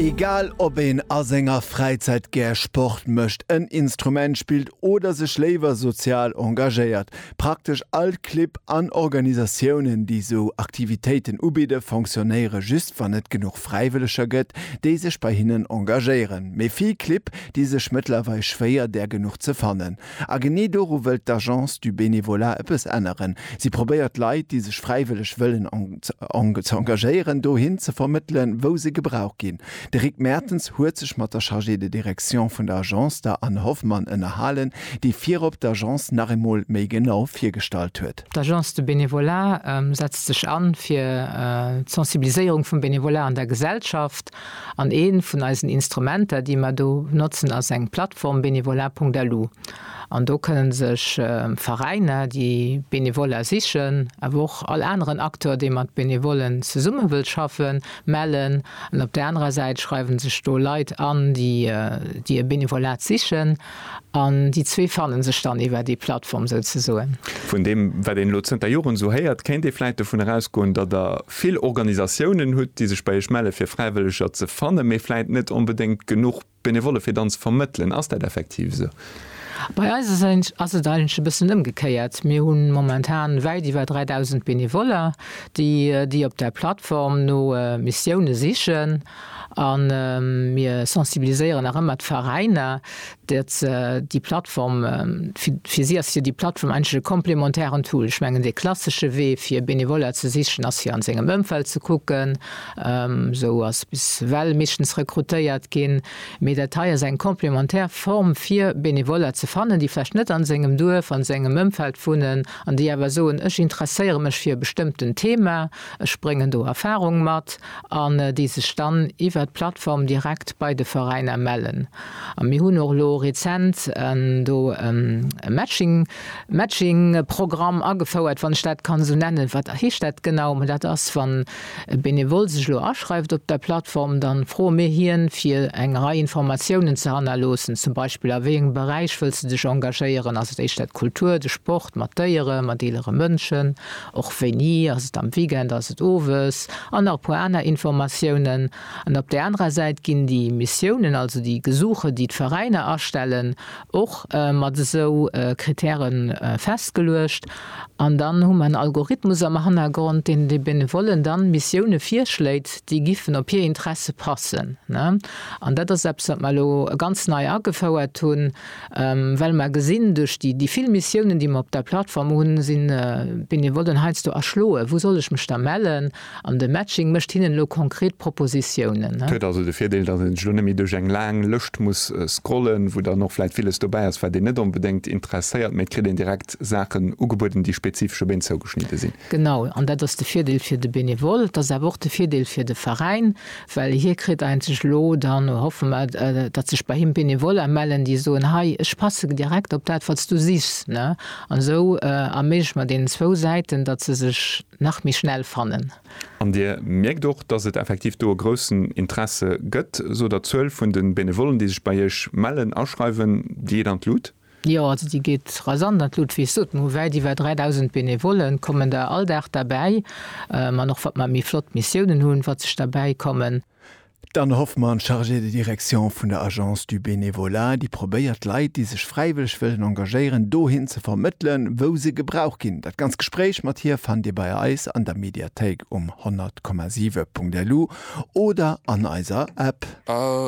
Egal ob een a senger Fräizäit gär Sport mécht, en Instrument spillt oder sech léiwer sozial engagéiert, praktesch all Clibb an Organisatiounen, déi sou Aktivitéiten ubidde, fonctionnéiere just, wann et genuch Fräiwëlleger gëtt, déi sech bei hinnen engagéieren. Mee vill Clibb di sech mëttlerweil schwéier, där genuch ze fannen. A genee doru wëllt d'Agence du Bénévolat ëppes änneren. Si probéiert Leit, déi sech fräiwëlleg wëllen engagéieren, dohin ze vermëttelen, wou se gebraucht ginn. De Rick Mertens huet sech mat der Chargée de direction vun der Agence, der Anne Hoffmann, ënnerhalen, déi virop d'Agence nach eemol méi genau virgestallt huet. D'Agence du Bénévolat setzt sech an fir d'Sensibiliséierung vum Bénévolat an der Gesellschaft. An ee vun eisen Instrumenter, déi mer do notzen, ass eng Plattform, Bénévolat.lu. An do kënnen sech Veräiner, déi Bénévolat sichen, awer och all aneren Acteur, dee mat Bénévolen zesumme wëllt schaffen, mellen. An op där anerer Säit schreiwe sech do Leit an, déi e Bénévolat sichen. An déi zwee fanne sech dann iwwer déi Plattform souzesoen. Vun deem, wat een elo zënter Joren esou héiert, kéint ee vläicht dovun erausgoen, datt Der vill Organisatiounen hutt, déi sech bei Iech melle fir Fräiwëlleger ze fannen, mee vläicht net onbedéngt genuch Benevolle fir dann ze vermëttelen. Ass dat effektiv esou? Bei eis ass et eigentlech e bëssen ëmgekéiert. Mir hu momentan wäit iwwer 3.000 Benevoller, déi op där Plattform no Missioune sichen. A mir sensibiliséieren nach ëmmer d'Veräiner, datt se déi Plattform, fir si ass jo déi Plattform eigentlech e komplementären Tool. Ech mengen, dee klassesche Wee fir Benevoller ze sichen ass fir a sengem Ëmfeld ze kucken. Esou ass bis ewell meeschtens rekrutéiert ginn. Mee dat hei ass eng komplementär Form fir Benevoller ze fannen, déi vläicht net a sengem Duerf, a sengem Ëmfeld wunnen an déi awer soen, ech interesséiere mech fir e bestëmmten Thema, ech bréngen do Erfarung mat. an déi sech dann iwwert d'Plattform direkt bei de Veräiner mellen. A mir hunn och elo rezent do e Matching, Matching, Programm agefouert, wann ech dat kann esou nennen. Wat heescht dat genau? Mä dat ass, wann e Benevole sech elo aschreift op der Plattform, da froe mir hien, fir eng Rei Informatiounen ze hannerloossen, zum Beispill, a wéi engem Beräich wëlls de dech engagéieren? Ass et éischter d'Kultur, de Sport, mat Déieren, mat eelere Mënschen? och wéini, ass et am Weekend, ass et owes, an nach e puer aner Informatiounen. An op där anerer Säit ginn déi Missiounen, also déi Gesuche, déi d'Veräiner astellen, och mat esou Kritäre festgeluecht. An dann hu mer en Algorithmus am Hannergrond, deen de Benevollen dann Missioune virschléit, déi giffen op hir Interesse passen. An dat ass eppes, wat mer elo ganz nei agefouert hunn. Well mer gesinn, duerch déi vill Missiounen, déi mer op der Plattform hunn, si Benevollen heiansdo erschloen, Wou soll ech mech da mellen? An de Matching mécht hinnen elo konkret Propositiounen. Huet also de Virdeel, datt een sech elo net méi duerch eng laang Lëscht muss scrollen, wou dann och vläicht villes dobäi ass, wat een net onbedéngt interesséiert, mä et kritt een direkt Saachen ugebueden, déi spezifesch op een zougeschnidde sinn. Genau, an dat ass de Virdeel fir de Benevole, et ass awer och de Virdeel fir de Veräin, well hie kritt eenzeg elo, dann hoffe mer, datt sech bei him Benevoller mellen, déi soen, hei, ech passe direkt op dat, wat s du sichs. An esou erméigleche mer deenen zwou Säiten, datt se sech nach méi schnell fannen. An Dir mierkt och, datt et effektiv do e groussen Interesse gëtt, sou der Zuel vun de Benevollen, déi sech bei Iech mellen, aschreiwen, déi geet an d'Lut. Jo, also déi geet rasant an d'Lut. Wéi ech soten, hu wäit iwwer 3.000 Benevollen, kommen der all Dag derbäi. An och wat mer méi flott Missiounen hunn, wat sech derbäi kommen. D'Anne Hoffmann, Chargée de direction vun der Agence du Bénévolat, déi probéiert d'Leit, déi sech fräiwëlleg wëllen engagéieren, dohin ze vermëttelen, wou se gebraucht ginn. Dat ganz Gespréich mat hir fannt Dir bei eis an der Mediathéik um 100,7.lu oder an eiser App. A